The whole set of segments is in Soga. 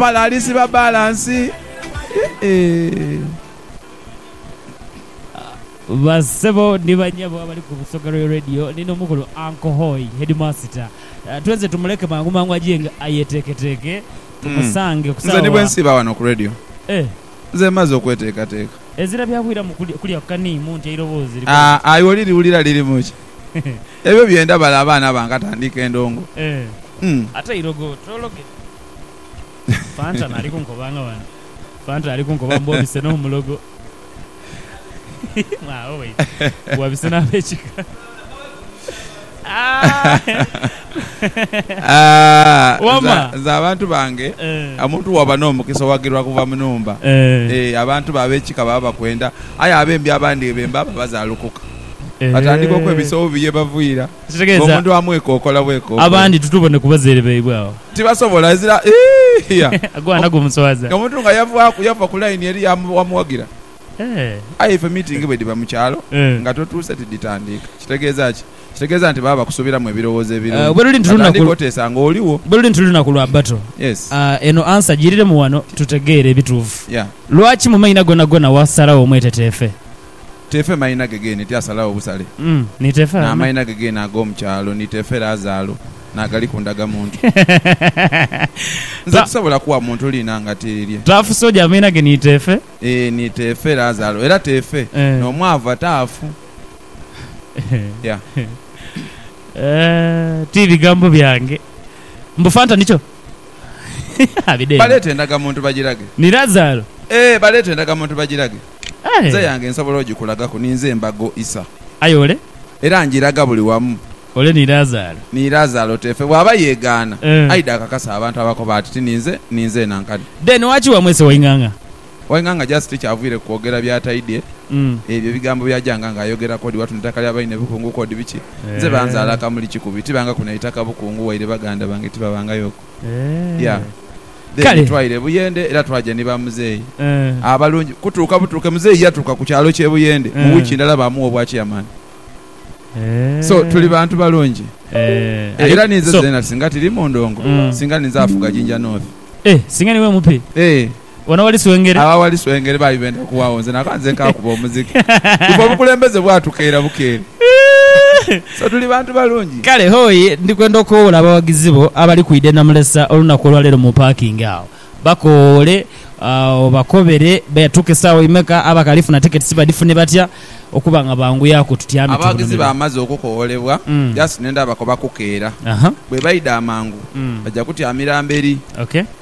Pala alisiba balansi. Bassebo ni bannyabo abali ku Busoga Royal Radio ni n'omukulu Uncle Hoi, Heedimaasita. Twenze tumuleke mangu mangu ajiinge ayeteeketeeke tumusange ku Nze ni bwe saawa. nsiiba wano ku Radio. Eh. Nze mmaze okweteekateeka. Ezira byakwiiramu kuli, kulya kani mu nti eiroboozi likola Aa, litya? aye oliriwulira lirimu ki? Ebyo bye ndaba le abaana bange ate andiika endongo. Eh. Mm. Ate eirogo, twologe. Fanta nali kunkoba nga wano. Fanta ali kunkoba mbu obise n'omulogo. Mwagho waidha. Mbu wabise n'abekika. Wama. Nze abantu bange, omuntu bw'oba n'omukisa owagirwa kuva mu nhumba. Ee, abantu bo abekika baba bakwenda. Aye abembi abandi bembi abo bazaalukuka. Batandika okwebisa obubi ye baviira. Ekitegeeza abandi tutubone ku bazaire baibwe agho. Tibasobola, ezira hia. Agwana gumuswaza. Omuntu nga yavaaku, yava ku line eri wamuwagira. Aye ife meeting bwe dhiba mu kyalo nga totuuse tidhitandiika. Kitegeeza ki? Kitegeeza nti baba bakusubiramu ebirowoozo ebirungi nga tandiika oteesa nga oligho. Bwe luli nti lunaku lwa battle, eno answer giiriremu wano tutegeere ebituufu. Lwaki mu maina gonagona wasalagho omweteteefe? Teefe maina ge geene ti asalagho busale, n'amaina ge geene ag'omu kyalo ni teefe Lazaalo n'agali ku ndagamuntu. Nze tisobola kugha muntu liina nga tirirye. Taafusa oja amaina ge ni teefe. Ee, ni teefe Lazaalo. Era teefe n'omwavu ataafu. Yeah. Ti bigambo byange. Mbu Fanta nikyo? Abideengo. Baleete endagamuntu bagirage. Ni Lazaalo. Ee, baleete endagamuntu bagirage. Nze eyange nsobola ogikulagaku, ninze embago isa. Aye ole. Era ngiraga buli wamu. Ole ni Lazaalo. Ni Lazaalo teefe. Bw'aba yeegaana, aidhe akakase abantu abakoba ati, Ti ninze, ninze nankani. Then waki wamwese Waing'ang'a? Waing'ang'a just tikyavaire ku kwogera by'ataidhe. Ebyo ebigambo by'ajanga nga ayogera k'odi watu n'eitaka lya baine Bukungu k'odi biki? Nze banzaala Kamuli Kikubi, tibangaku na itaka Bukungu waire baganda bange tibabangayoku. Yeah. Then twaira e Buyende era twaja ni ba Muzeeyi abalungi. Kutuuka butuuke Muzeeyi yatuuka ku kyalo ky'e Buyende mu wiiki ndala baamugha obwa Chairman. So tuli bantu balungi era ninze zeena singa tiri mu ndongo, singa ninze afuga Jinja North. Eh! Singa niwe mupe. Eh! Wano wali swengere. Agho awali swengere baali benda kuwagho nze naba nze nkaakuba omuziki. Ife obukulembeze bwatukeera bukeere. So tuli bantu balungi. Kale hoi ndi kwenda okowoola abawagizi bo abali kwidha e Namulesa olunaku olwa leero mu paakingi agho. Bakowoole, obakobere beetuuka esaawa imeka, abakali funa tiketisi badhifune batya okuba nga banguyaku tutyame tubunamire. Abawagizi baamaze okukowoolebwa just ne ndaba ko bakukeera. Bwebaidha amangu baja kutyamira mberi.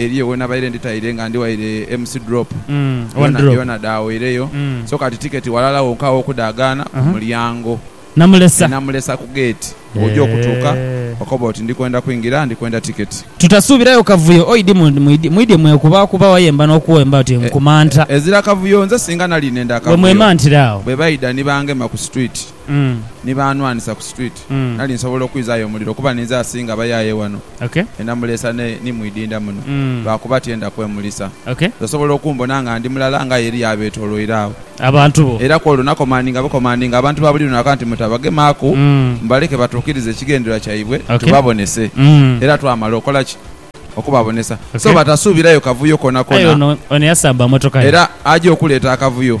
eriyo wenabaire nditaire nga ndi waire MC Drop yona yona dhaawaireyo so kati tiketi walala wonka wokudhagaana ku mulyango ne namulesa ku gate bwoja okutuuka okoba oti ndikwenda kwingira ndikwenda tiketi. Tutasuubirayo kavuyo oidi mwidye mwekubaakuba wayemba n'okuwemba oti nkumanta. Ezira kavuyo nze singa nali nenda kavuyo bwebaidha ni bangema ku street. ni baanwanisa ku street, nali nsobola okwizayo omuliro kuba ninze asinga abayaye wano e Namulesa ne ni mu idinda muno lwakuba tyenda kwemulisa. Osobola okumbona nga ndi mulala nga aye eriyo abetoloire agho. Era ku olwo nakomandinga bukomandinga abantu ba buli lunaku nti mutabagemaku, mubaleke batuukirize ekigendererwa kyaibwe tubabonese. Era twamala okola ki? Okubabonesa. So batasuubirayo kavuyo koonakona era aja okuleeta akavuyo.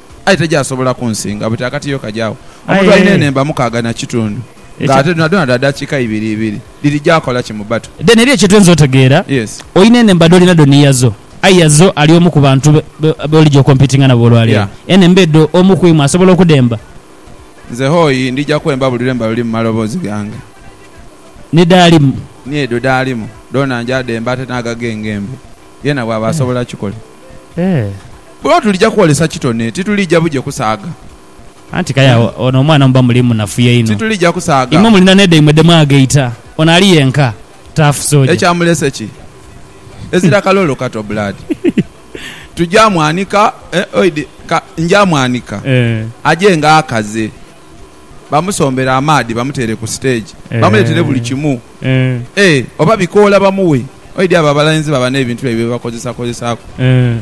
Aye tegyasobola kunsinga buti akatiyo kagya agho. Omuntu alina enhemba mukaaga na kitundu, nga ate dhonadhona dha dakiika ibiri ibiri, dhiri gyakola ki mu battle? Then eriyo kyetuyinza otegeera, Yes. Olina enhemba dholina dho ni Yazo, aye Yazo ali omu ku bantu b'olija okompitinga nabo olwaleero. Yeah. Enhemba edho omu ku imwe asobola okudhemba? Nze hoi, ndija kwemba buli lwemba luli mu maloboozi gange. Ni dhaalimu? Ni edho dhaalimu, dhoona nja dhemba ate n'ago agengembe. Yeena bwaba asobola kikola. Ee. Bwebaba tulija kwolesa kitone, titulija buje kusaaga. Anti kale agho ono omwana muba muli munafuya inho. Titulija kusaaga. Imwe mulina ne dhaimwe dhe mwagaita. Ono ali yenka. Tough soja. Ekyamulese ki? Ezira kaloolo kato blood. Tuja mwanika, eh, oidi, ka, nja mwanika. Aje nga akaze. Bamusombere amaadhi bamuteere ku siteegi. Bamuleetere buli kimu. E, oba bikoola bamughe. Oidhi abo abalenzi baba n'ebintu byaibwe bye bakozesakozesaaku.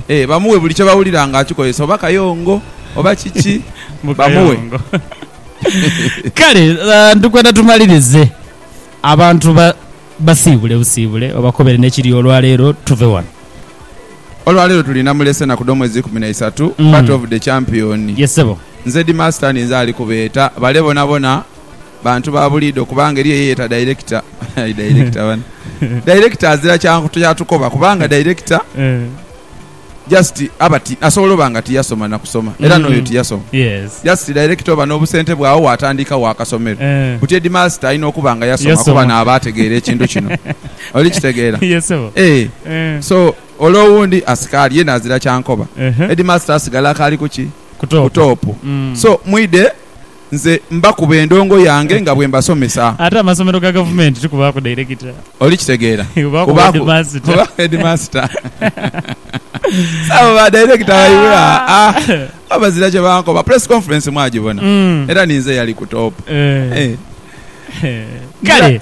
E, bamughe buli kye bawulira ng'akikozesa, oba kayongo, oba kiki, bamughe. Kale, ndikwenda tumalirize. Abantu ba. Basiibule busiibule obakobere n'ekiri olwaleero tuve wano. Olwaleero tuli Namulese enaku dh'omwezi ikumi na isatu, Battle of the Champion. Yes sebo. Nze di Master ninze ali kubeeta bale bonabona bantu ba buliidho kubanga eriyo eyeyeta Director aye Director bana Director azira kyantukoba kubanga Director. Just aba ti, asobola oba nga tiyasoma na kusoma era n'oyo tiyasoma. Just director oba n'obusente bwe agho waatandikawo akasomero. Buti headmaster alina okuba nga yasoma kuba naaba ategeera ekintu kino. Oli kitegeera? Eeh. So, ole owundi asikaali yena azira kyankoba. Headmaster asigala akaali ku ki? Ku top. So, mwidhe. nze mbakuba endongo yange nga bwe mbasomesa. Ate amasomero ga gavumenti tikubaaku dairekita. Oli kitegeera? Kubaaku heedimaasita. So abo ba dairekita baibwe aa oba bazira kye bankoba. Press conference mwagibona? Era ninze eyali ku toopu. Eeh. Kale.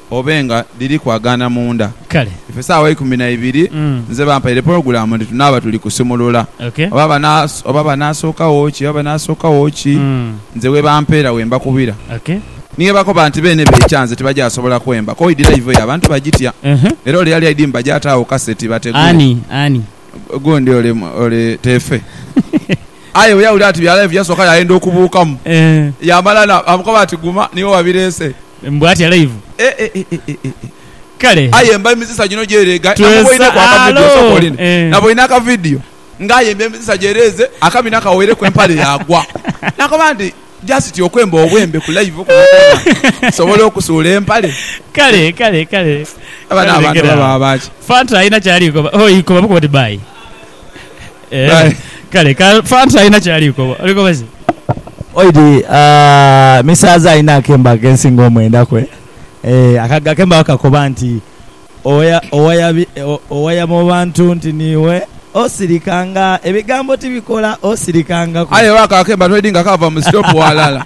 obe nga dhiri kwagaana munda. Kale. Ife saawa eikumi na ibiri nze bampaire pulogulaamu nti tunaaba tuli kusumulula. Okay. Oba banaa, oba banaasookagho ki, oba banaasookagho ki, nze we bampeera we mbakubira. Okay. Ni bwebakoba nti beene beekya nze tibagyasobola kwemba, koidi live eyo abantu bagitya. Era ole yali aidhi mba gy'ataagho kaseti bategule. Ani? Ani? Gundi ole, ole Teefe. Aye bwe yawulira nti bya live yasooka yaayenda okubuukamu. Yaamala na, baamukoba nti guma niiwe wabireese. Mbu atya live. Kale. Aye mba emizisa gino gyereega namuboineku akavidio osooka oli nti naboine akavidio nga ayemba emizisa gyereeze akabina kawereku empale yaagwa nakoba nti just okwemba obwembe ku live kuno kwona kusobola okusuula empale. Kale kale kale. Abano abantu oba baba baaki? Fanta alina kyali koba. Hoo ikoba bukoba oti bye. Eeh kale ka fanta alina kyali kukoba oli koba ki? Oid aah misaaza alina akembo akensingo omwenda kwe eeh aka akembo kakoba nti oya owaya bi owaya mu bantu nti niiwe osirika nga ebigambo tibikola osirika nga ku. Aye oba ako akembo ati oid nga kaava mu sitopu walala.